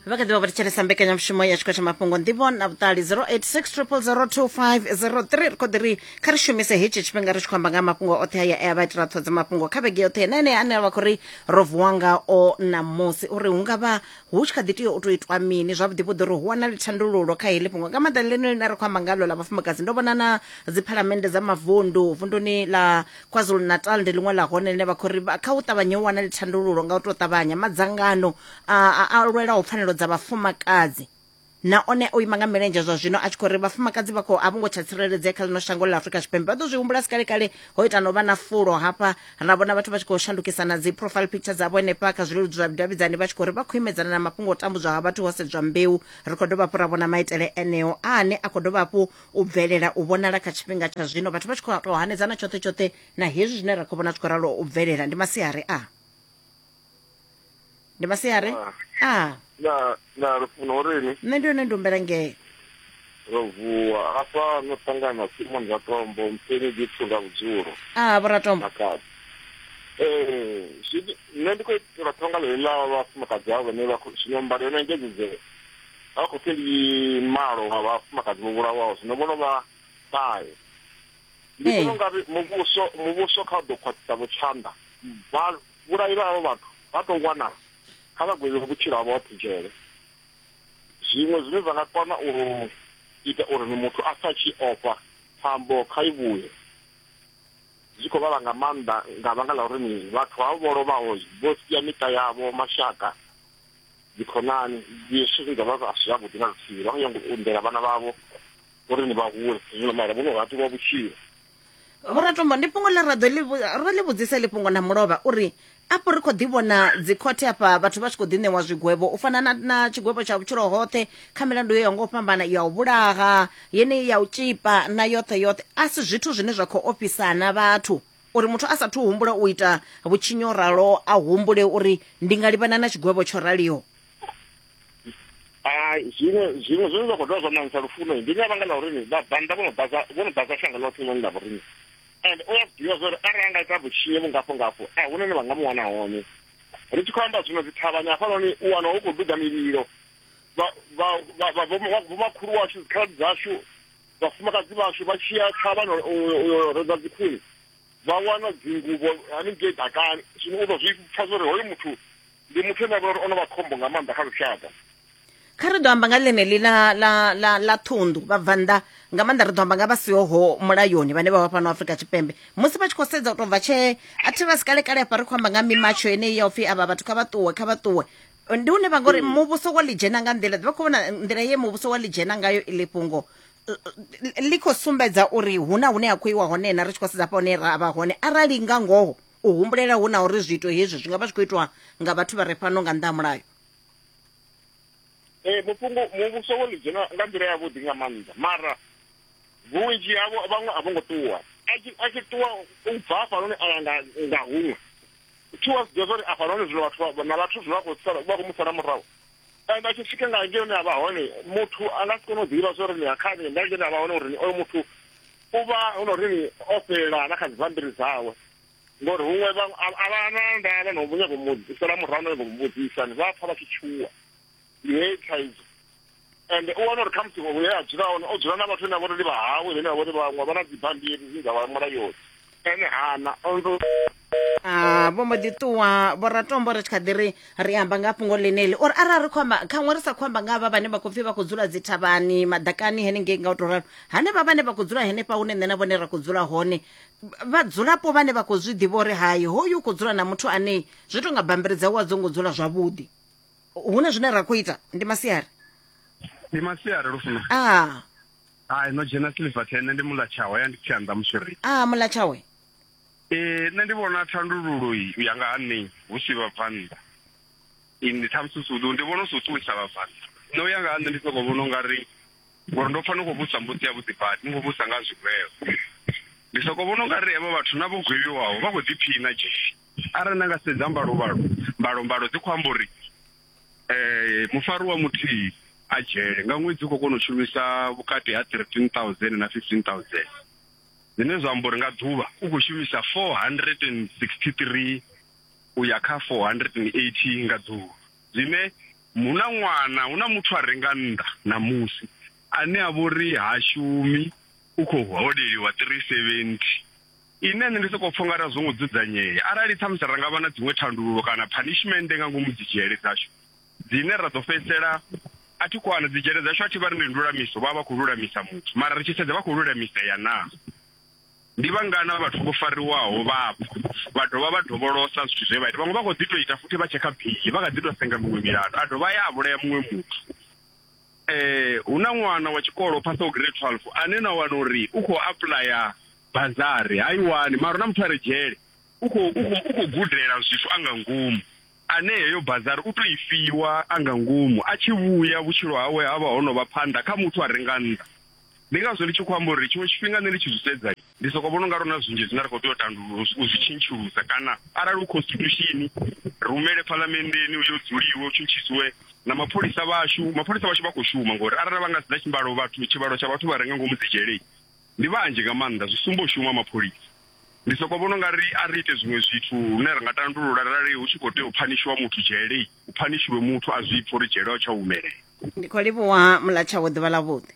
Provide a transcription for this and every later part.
vha kha ḓivha vha thetshelesa mbekanyamushumo ya tshikho tsha mafhungo nḓivho na vhuṱali 0860002503 ri khou ḓi ri kha ri shumise hetshi tshifhinga ri tshi khou amba nga mafhungo oṱhe aya e a vha itela ṱhodza mafhungo kha vhege yoṱhe na enea ane a vha khou ri ro vuwa ngao ṋamusi uri hu nga vha hu tshi kha ḓi tea u tou itwa mini zwavhuḓi vhuḓi uri hu wanale thandululo kha heḽi fhungo nga maanḓa ḽeneḽi ḽine ri khou amba ngalo ḽa vhafumakadzi ndo vhona na dziphalamennde dza mavundu vunduni ḽa kwazulu-natal ndi ḽiṅwe ḽa hone ḽine vha khou ri vha- kha u ṱavhanye u wanale thandululo nga u tou ṱavhanya madzangano a a- a lwelaho pfanelo dza vhafumakadzi na one o ima nga milenzhe zwa zwino a tshi khou ri vhafumakadzi vha khou a vho ngo tsha tsireledzea kha ḽino shango ḽa afurika tshipembe vha ḓo zwi humbula si kale kale ho ita no vha na fulo hafha ra vhona vhathu vha tshi khou shandukisa na dzi profile picture dzavho henefha kha zwileludzi zwa vhudavhidzani vha tshi khou ri vha khou imedzana na mafhungo o tambudzwa ha vhathu ho sedzwa mbeu ri khou dovha hafhu ra vhona maitele eneo ane a khou dovha hafhu u bvelela u vhonala kha tshifhinga tsha zwino vhathu vha tshi khou tou hanedzana tshoṱhe tshoṱhe na hezwi zwine ra khou vhona zwi khou ralo u bvelela ndi masiari a ndi masiari a na na lufuno urini nṋe ndi yone ndi humbela ngee ro vuwa hafha no ṱangana simon ratombo mpeni gipfu nga vhudzulo a vhoratombo makadzi ee nṋe ndi khou itela ṱhonga ḽeḽi ḽa vhafumakadzi avho vhane vha khou zwino mbadelo na engedzedzee vha khou pfi ndi malo wa vhafumakadzi vho vhulawaho zwino vho lovha ṱahe ndi vhona eh. ungari muvhuso muvhuso kha u ḓo khwaṱhisa vhutshanda vha vhulayi vha havho vhathu vha tou wana kha vha gwevhiwe vhutshilo ha vhoṱhe dzhele zwiṅwe zwine zwa nga kona u ita uri ni muthu a sa tshi ofha phambo kha i vhuye zwi khou vhala nga maanḓa nga vhanga ḽa uri ni vhathu havho vho lovhaho vho sia miṱa yavho mashaka dzikhonani dzishu dza vha vhashu yavhuḓi na luthihi vha khou nyanga u undela vhana vhavho uri ni vha hule zwino maila vho no hatiwa vhutshilo vhoratombo ndi fhungo ḽe ra ḓo ro ḽi vhudzisa ḽi fhungo na mulovha uri afho ri khou ḓi vhona dzikhothe afha vhathu vha tshi khou ḓi ṋewa zwigwevho u fana na, na tshigwevho tsha vhutshilo hoṱhe kha milandu yo ya ngo fhambana ya u vhulaha yeneyi ya u tshipa na yoṱhe yoṱhe a si zwithu zwine zwa khou ofhisana vhathu uri muthu a sathu humbula u ita vhutshinyi o ralo a humbule uri ndi nga livhana na tshigwevho tsho raliho hai zwiṅwe zwiṅwe zwine zwa khou dovha zwa ṋaṋisa lufuno ndi nga vhanga ḽa urini vhabvannḓa vho no ḓadza vho no ḓadza shango ḽoṱhe noni ḽa vhoriṋe and u a ḓivha zwa uri arali a nga ita vhutshinye vhungafho ngafho a hu none vha nga mu wana hone ri tshi khou amba zwino dzithavhani hafhanoni u wana hu khou duga mililo vhomakhulu washu dzikhaladzi dzashu vhafumakadzi vhashu vha tshiya thavhana uyo redza dzikhuni vha wana dzingubo haningei dakani zwino u ḓo zwi pfa zwa uri hoyo muthu ndi muthu ane a vha uri o no vha khombo nga maanḓa kha lushaka kha ri ḓo amba nga ḽeneḽi ḽa ḽa ḽa ḽa ṱhunḓu vhabvannḓa nga maanḓa ri ḓo amba nga vha sihoho mulayoni vhane vha vha fhano afrika tshipembe musi vha tshi khou sedza u tou bva tshee a thi vha si kalekale hafha ri khou amba nga mimatsho yeneyi ya upfhi avha vhathu kha vha ṱuwe kha vha ṱuwe ndi une vha ngori mm. muvhuso wa ḽi dzhena nga nḓila vha khou vhona nḓila ye muvhuso wa ḽi dzhena ngayo iḽi fhungo ḽi khou sumbedza uri hu na hune ha khou iwa hone na ri tshi khou sedza hafha hune ra vha hone arali nga ngoho u humbulela hu na uri zwiito hezwi zwi nga vha zwi khou itwa nga vhathu vha re fhano nga nnḓa ha mulayo ee mufhungo muvhuso wo ḽi dzhena nga nḓila yavhuḓi nga maanḓa mara vhunzhi havho vhaṅwe a vho ngo ṱuwa a tshi ṱuwa u bva hafhanoni a ya nga huṅwe thi wa zwi ḓivha zwa uri afha nahone zwino vhathu na vhathu zwino vha khou sala vha khou mu sala murahu and a tshi swika nga ngei hune a vha hone muthu a nga si kone u ḓivha zwa uri ni akhani nga ngei hune a vha hone uri oyo muthu u vha hu na uri ni o fhelela na kha dzibambiri dzawe ngori huṅwe a vha na ndavha no nyago mu sala murahu no nyago mu vhudzisa ni vha pfa vha tshi tshuwa ndi heyi thaidzo ende u wana uri khamusi hune a dzula hone o dzula na vhathu vhane vha vhori ndi vhahawe vhane vha vhori vhaṅwe vha na dzibammbiri dzine dza vha mulayoni ene hana Ah, vho mbo ḓi ṱuwa vhoratombo ri tshi kha ḓi ri ri amba nga fhungo ḽeneḽi uri arali ri khou amba khaṅwe ri sa khou amba nga havha vhane vha khou pfhi vha khou dzula dzi thavhani maḓakani henengei nga u tou ralo hanevha vhane vha khou dzula henefha hune nṋe na vhone ra khou dzula hone vhadzulapo vhane vha khou zwi ḓivha uri hai hoyu u khou dzula na muthu anei zwi tou nga bammbiri dzawe a dzo ngo dzula zwavhuḓi hu na zwine ra khou ita ndi masiari ndi masiari lufuno a ah. hai no dzhena silver ten ndi mula tshawe ya ndi tshanḓa muswiri a ah, mula tshawe ee nṋe ndi vhona thandululo u ya nga ha nṋe hu si vhabvannḓa ndi ṱhamusi sudu ndi vhona u si u ṱuwisa vhabvannḓa nṋe u ya nga ha nṋe ndi soko vhona u nga ri ngori ndo pfa ni khou vhusa mbusi ya vhuḓi badi ni khou vhusa nga zwigwevho ndi soko vhona u nga ri hevho vhathu na vho gwevhiwaho vha khou ḓiphiṋa dzheni Arali na nga sedza mbalovhalo, mbalombalo dzi khou amba uri mufariwa muthihi a dzhele nga ṅwedzi u khou kona u shumisa vhukati ha 13000 na 15000, zwine zwa amba uri nga ḓuvha u khou shumisa 463 u ya kha 480 nga ḓuvha. Zwine hu na ṅwana, hu na muthu a re nga nnḓa ṋamusi ane a vha uri ha shumi, u khou holeliwa 370. Ine nṋe ndi sokou pfha ungari a zwo ngo dzudzanyea. Arali ṱhamusi ra nga vha na dziṅwe thandululo kana phanishimennde nga ngomu dzidzhele dzashu dzine ra ḓo fhedzisela a thi khou ana dzidzhele dzashu a thi vha ri ndi ndulamiso vha vha khou lulamisa muthu mara ri tshi sedza vha khou lulamisea naa. Ndi vhangana vhathu vho fariwaho vha bva vha dovha vha dovholosa zwithu zwe vha ita vhaṅwe vha khou ḓi tou ita futhi vha tshekha bili vha kha ḓi tou senga miṅwe milandu a dovha ya a vhulaya muṅwe muthu. Hu na ṅwana wa tshikolo o phasaho grade twelve ane na wana uri u khou apuḽaya bazari ha i wani mara na muthu a re dzhele u khou gudela zwithu a nga ngomu ane heyo bazari u tou i fiwa a nga ngomu a tshi vhuya vhutshilo hawe ha vha ho no vha phanḓa kha muthu a re nga nnḓa ndi ngazwo ndi tshi khou amba uri tshiṅwe tshifhinga nṋe ndi tshi zwi sedza ndi soko vhona unga rona zwinzhi zwine ra khou tea u tandulula u zwi tshintshulusa kana arali u constitution rumele phalamenndeni u yo dzuliwe u tshintshisiwe na mapholisa vhashu mapholisa vhashu vha khou shuma ngori arali vha nga sedza tshimbalo vhathu tshivhalo tsha vhathu vha renga ngomu dzi dzhelei Ndi vhanzhi nga maanḓa, zwi sumba u shuma ha mapholisa. Ndi sokou vhona u nga ri a ri ite zwiṅwe zwithu lune ra nga tandulula arali hu tshi khou tea u phanishiwa muthu dzhele, hu phanishiwe muthu a zwi pfa uri dzhele ho tsha humelela. Ndi khou livhuwa Muḽatshawe ḓuvha ḽa vhuḓi.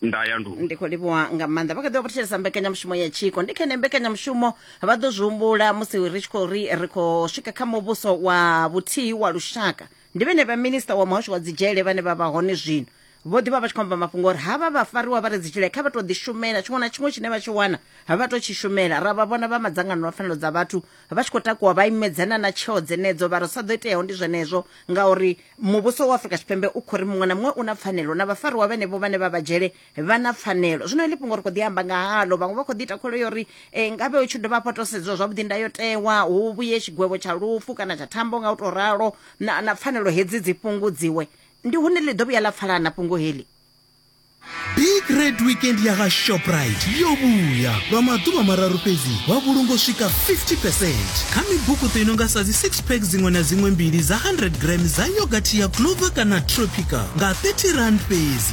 Nda ya ndu. Ndi khou livhuwa nga maanḓa vha kha ḓi vha vha thetshelesa mbekanyamushumo ya tshiko ndi khene mbekanyamushumo vha ḓo zwi humbula musi ri tshi khou ri ri khou swika kha muvhuso wa vhuthihi wa lushaka ndi vhene vha minista wa muhasho wa dzidzhele vhane vha vha hone zwino vho ḓi vha vha tshi khou amba mafhungo uri havha vhafariwa vha re dzitshile kha vha tou ḓishumela tshiṅwe na tshiṅwe tshine vha tshi wana ha vha tou tshi shumela ra vha vhona vha madzangano a pfanelo dza vhathu vha tshi khou takuwa vha imedzana na tsheo dzenedzo vha ri sa ḓo iteaho ndi zwenezwo ngauri muvhuso wa afrika tshipembe u khou ri muṅwe na muṅwe u na pfanelo na vhafariwa vhenevho vhane vha vha dzhele vha na pfanelo zwino heḽi fhungo ri khou ḓi amba nga halo vhaṅwe vha khou ḓi ita kholo yo ri eh, ngavhe hu tshi dovha hafha to sedziwa zwavhuḓi ndayotewa hu vhuye tshigwevho tsha lufu kana tsha thambo nga u tou ralo na, na pfanelo hedzi dzi fhungudziwe ndi hune ḽi ḓo vhuya ḽa pfalana fhungo heḽi big red weekend ya ga shoprite yo vhuya lwa maḓuvha mararu fhedzi wa vhulunga u swika 50 percent kha mibukuṱo i no nga sa dzi 6 pack dziṅwe na dziṅwe mbili dza 100 gram dza yogathi ya clover kana tropica nga 30 rand fhedzi